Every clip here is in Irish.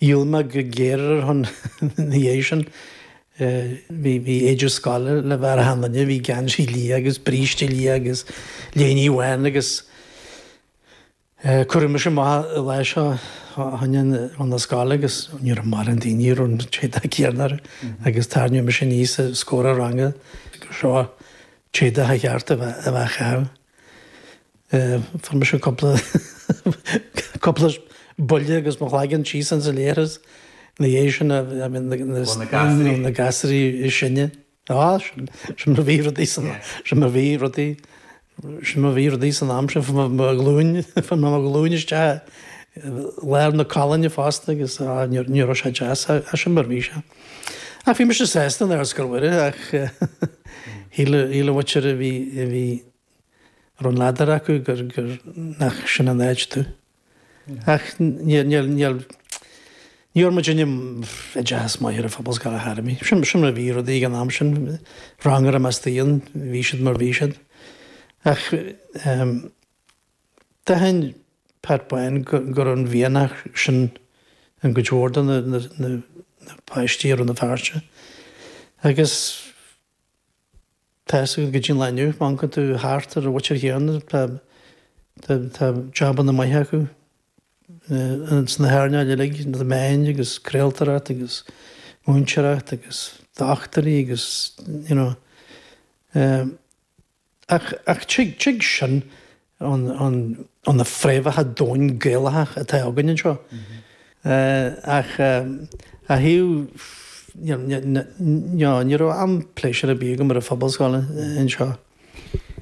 dhíol mé go géar ar a shon ina dhiaidh sin. Bhí éide scoile le bheith ar achan duine, bhí geansaí liath agus bríste liath agus léinidh bhán agus cuireadh mise amach an lá seo a tháinig chun na scoile agus ní raibh mórán daoine a raibh an t-éadach céanna orthu agus tarraingíodh mise aníos os comhair an ranga gur seo an t-éadach ba cheart a bheith acu. Fuair mise cúpla cúpla buille agus mo chloigeann síos ins an leithreas ina dhéidh sin a I mean na na Ó, na gasraí. na- na gasraí is sine. Á sin sin mar a bhí rudaí san Yeah. sin mar a bhí rudaí sin mar a bhí rudaí san am sin fuair mé glúin fuair mé glúin isteach i lár na colainne fosta agus á, ní ní raibh sé deas ach sin mar bhí sé. Ach bhí mise sásta in Ardscoil Mhuire ach shíl an mhuintir a bhí a bhí a raibh an ladar acu gur gur nach sin an áit domh. Ach níor níor níor ní bhfuair muidinne oideachas maith ar an phobalscoil ar chor ar bith. Sin sin mar a bhí rudaí ag an am sin. Rang ar an meas daoin bhí siad mar bhí siad. Ach ehm. D'aithin Pat Bán go raibh an mhianach sin i gcuid mhór de na páistí i Rann na Feirste agus tá sé go dtí an lá inniu, má amharcann tú thart ar an mhuintir chéanna, tá jabanna maithe acu sna hearnáil uilig, na meáin agus craoltóireacht agus múinteoireacht agus dochtúirí agus, you know, Ach tig sin ó na fréamhacha domhain Gaelacha atá againn anseo. Ach a Aodh, ní raibh am pléisiúr ar bith agam ar an phobalscoil anseo.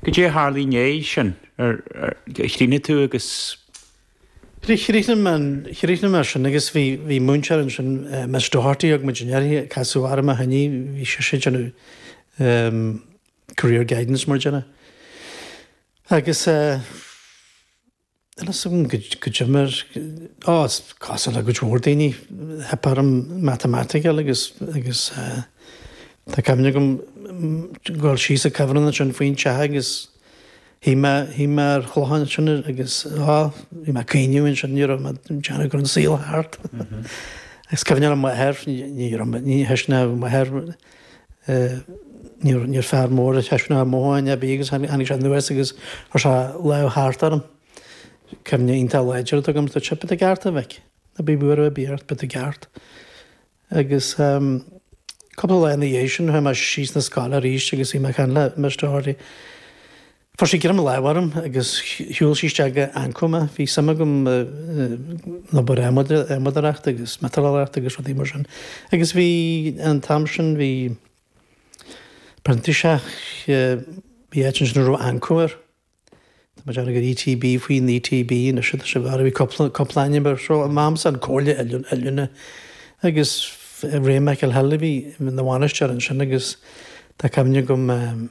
Goidé a tharla i ndéidh sin? Ar chríochnaigh tú agus. Chríochnaigh mé, chríochnaigh mé sin agus bhí múinteoir ansin, Miss Doherty, a thug muidinne uirthi, casadh orm ó shin í, bhí sise ag déanamh. Career guidance mar a déarfá. Agus eh níl a fhios agam goidé mar á cosúil le go leor daoine theip orm matamaitic a fháil agus agus eh tá cuimhne agam dhul síos an cuibhreann ansin faoin teach agus shuigh mé shuigh mé ar chloch ansin agus á bhí mé ag caoineadh ansin ní raibh mé ag déanamh go raibh an saol thart. Agus cuimhne ar m'athair ní raibh mé ní theisteann mé ar m'athair. Níor fear mór ag taispeáint mothúcháin ar bith é agus tháinig sé anuas agus chuir sé lámh thart orm. Cuimhne iontach láidir atá agam dúirt sé, beidh tú ceart a mhic, ná bí buartha ar bith ort, beidh tú ceart. Agus cúpla lá ina dhiaidh sin chuaigh mé síos na scoile arís agus bhí mé ag caint le Miss Doherty. Fuair sí greim láimhe orm agus shiúl sí isteach go Anco mé. Bhí suim agam i n-obair adhmadaireachta agus miotalóireachta agus rudaí mar sin agus bhí an t-am sin bhí printíseach, bhí áit ansin a raibh Anco air. Tá mé ag déanamh gur ETB faoin ETB anois atá sé bharr, bhí cúpla, cúpla ainm air. So in m'amsa An Chomhairle Oiliúna agus Ray Michael Hill a bhí ina bhainisteoir ansin agus tá cuimhne agam,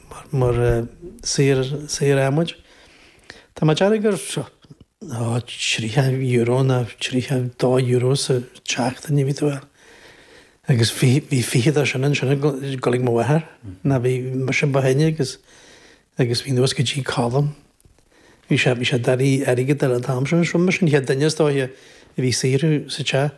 mar shaor adhmaid. Tá mé ag déanamh gur €30 ná €32 sa tseachtain a bhí tú ag fáil agus bhí fiche de sin ansin ag dul ag mo mháthair. Ná bhí mise an ba shine agus bhí anuas go dtí Colm. Bhí sé bhí sé d'iarraidh airgead ar an t-am sin. Mise an chéad duine is dóiche a bhí ag saothrú sa teach.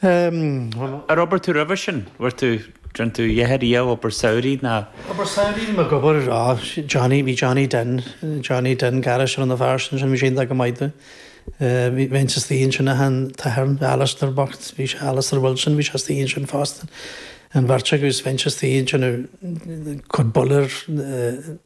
Bhí. Ar oibir tú roimhe sin? Bhfuair tú, rinne tú a dhath riamh obair samhraidh ná. Obair samhraidh ná obair á Johnny, bhí Johnny Den, Johnny Den gairis a rinne a fear sin sin bhí sé iontach go maith domh. Bhí bheinn sa tsaoi ansin a than t-athair Alister bocht, bhí sé Alister Wilson, bhí sé sa tsaoi ansin fosta. An bheirt acu is bheinn sa tsaoi ansin ag cur boiler,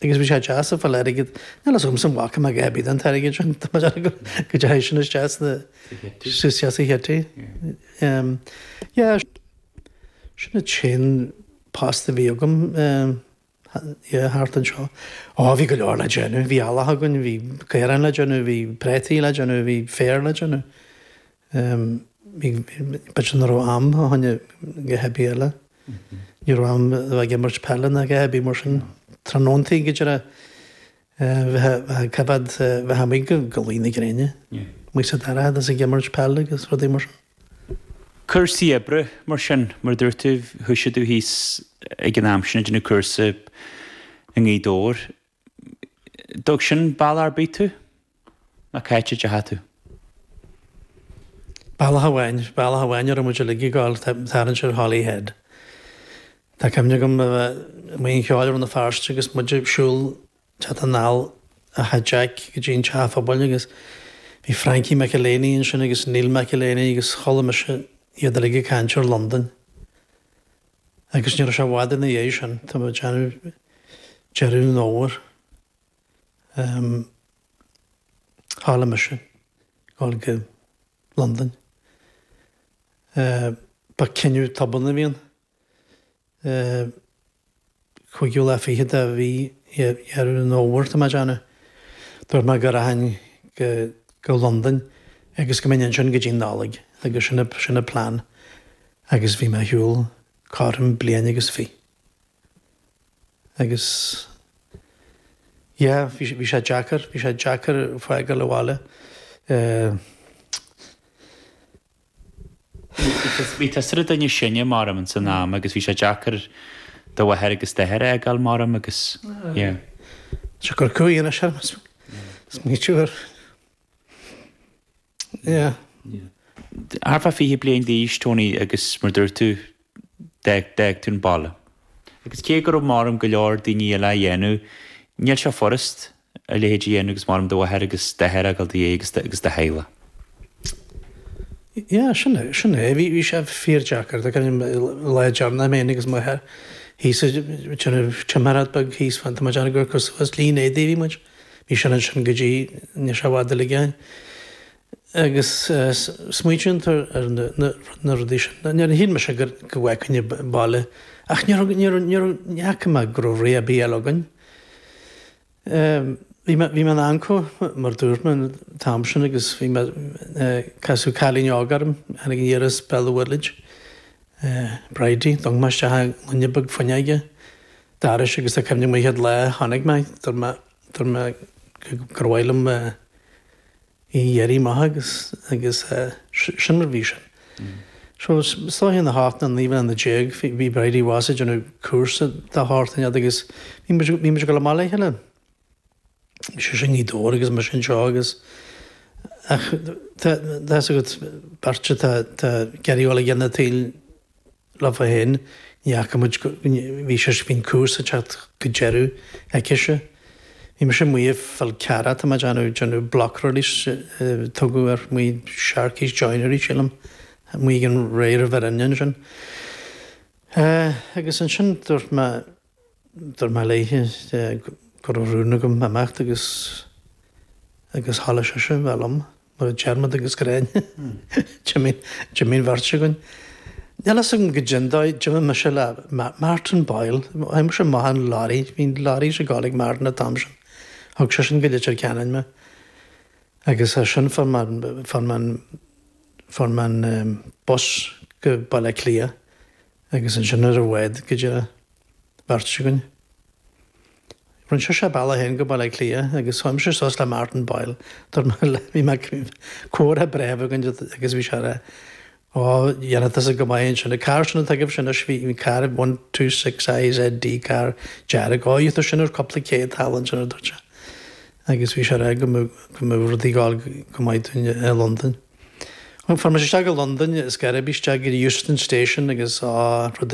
Agus bhí sé deas ag fáil airgead, níl fhios agamsa an bhfaca mé a dhath ar bith den airgead sin, tá mé dearfa go dteachaigh sin isteach sna, isteach sa chití. Yeah, sin an t-aon post a bhí agam, yeah, thart anseo. Á, bhí go leor le déanamh, bhí eallach againn, bhí caoráin le déanamh, bhí preataí le déanamh, bhí féar le déanamh. B'fhéidir nach raibh am fá choinne a dhath ar bith eile. Ní raibh am a bheith ag imirt peile ná a dhath ar bith mar sin. Tráthnóntaí go díreach bheith ag coimeád bheith amuigh go luí na gréine. Go mbeadh sé dorcha is ag imirt peile agus rudaí mar sin. Cúrsaí oibre mar sin, mar a dúirt tú, thoisigh tú thíos ag an am sin ag déanamh cúrsa i nGaoth Dobhair. Dtug sin bealach ar bith tú? Ná cá háit a deachaigh tú. Bealach amháin, bealach amháin a raibh muid uilig ag gabháil, tarraingt ar Holyhead. Tá cuimhne agam a bheith amuigh ag an cheol i Rann na Feirste agus muid ag siúl teacht anall ó Theach Jack go dtí an teach phobail agus bhí Frankie McEleney ansin agus Neil McEleney agus chuala mise iad uilig ag caint ar Londain. Agus ní raibh sé i bhfad ina dhiaidh sin, tá mé ag déanamh deireadh an fhómhair, em, tharla mise dhul go Londain. Eh, ba cinneadh tobann a bhí ann. Eh, Cúigiú lá fichead de mhí Dheireadh an Fhómhair tá mé ag déanamh. Dúirt mé go rachainn go Londain agus go mbeinn ansin go dtí'n Nollaig agus sin an plean agus bhí mé ar shiúl cothrom bliain agus fi. agus yeah bhí sé deacair, bhí sé deacair fágáil an bhaile. Bhí tusa ar an duine is sine mar bheadh ins an am agus bhí sé deacair do mháthair agus d'athair a fhágáil mar bheadh agus yeah. Seo gur cúig anois orm is maítear. Yeah. Thart fá fiche bliain d'aois Tony agus mar dúirt tú d'fhág tú an baile. Agus cé go raibh mar bheadh go leor daoine eile á dhéanamh, níl sé furast a leithéid a dhéanamh agus mar bheadh do mháthair agus d'athair a fhágáil i do dhiaidh agus do agus do theaghlach. Yeah, sin é, sin é. Bhí, bhí sé fíor deacair, do gairim lá deireanach mé féin agus m'athair thíos ag déanamh timireacht bheag thíos fán, tá muid ann ag cur suas líne éadaigh a bhí muid, bhí sin ansin go dtí, níl sé i bhfad a ligeáin. agus smaoitíonn tú ar na rudaí sin. Níor shíl mise go bhfágfainn an baile, ach níor fhaca mé go raibh rogha ar bith eile againn. Bhí mé in Anco, mar dúirt mé, an t-am sin agus bhí mé, casadh cailín óg orm, tháinig aniar as Belmullet, Bridie, d'amharc mé isteach, duine beag fionn ag an doras agus tá cuimhne agam an chéad lá a chonaic mé í, dúirt mé gur mhaith liom, í a iarraidh amach agus agus sin mar bhí sin. So seo thart fá na hocht nó naoi mbliana déag bhí Bridie abhus ag déanamh cúrsa dhá sheachtain ar fad agus bhí muid bhí muid ag dul amach le chéile. Bhí sé sin i nGaoth Dobhair agus mar sin seo agus ach tá a fhios agat beirt atá ag iarraidh a ghabháil a dhéanamh taobh lá fá shin, ní fhaca muid go, bhí sé, bhí an cúrsa ag teacht go deireadh aici-se. Bhí mise amuigh i bhFál Carrach tá mé ag déanamh, déanamh block release a tugadh air, amuigh Sharkey's Joinery sílim, amuigh ag an Ray River Inn ansin. Eh, agus ansin dúirt mé. Dúirt mé léithe go raibh rún agam imeacht agus agus tharla sise bheith liom, mar a Diarmaid agus Gráinne, d'imigh an, d'imigh an bheirt againn. Níl fhios agam goidé an dóigh, d'imigh mise le Martin Boyle, chuaigh mise amach ar an lorry, bhí lorries ag dul ag Martin an t-am sin, thug sé sin go Leitir Ceanainn mé agus as sin fuair mé, fuair mé an, fuair mé an bus go Baile Átha Cliath. Agus ansin ar maidin go dtí an bheirt againn. Rinne sise a bealach féin go Baile Átha Cliath agus chuaigh mise suas le Martin Boyle, dar ndóigh. Bhí comhrá breá againn agus bhí sé ag rá déanann tusa go maith ansin. An carr sin atá agaibhse anois, bhí an carr one two six I Z D, carr dearg. Ó, gheobhaidh tú sin ar cúpla céad thall ansin, a dúirt sé. Agus bhí sé ag rá go mbeadh rudaí ag gabháil go maith dúinn i Londain. Chuamar isteach i Londain is gairid isteach go dtí Euston Station agus á rud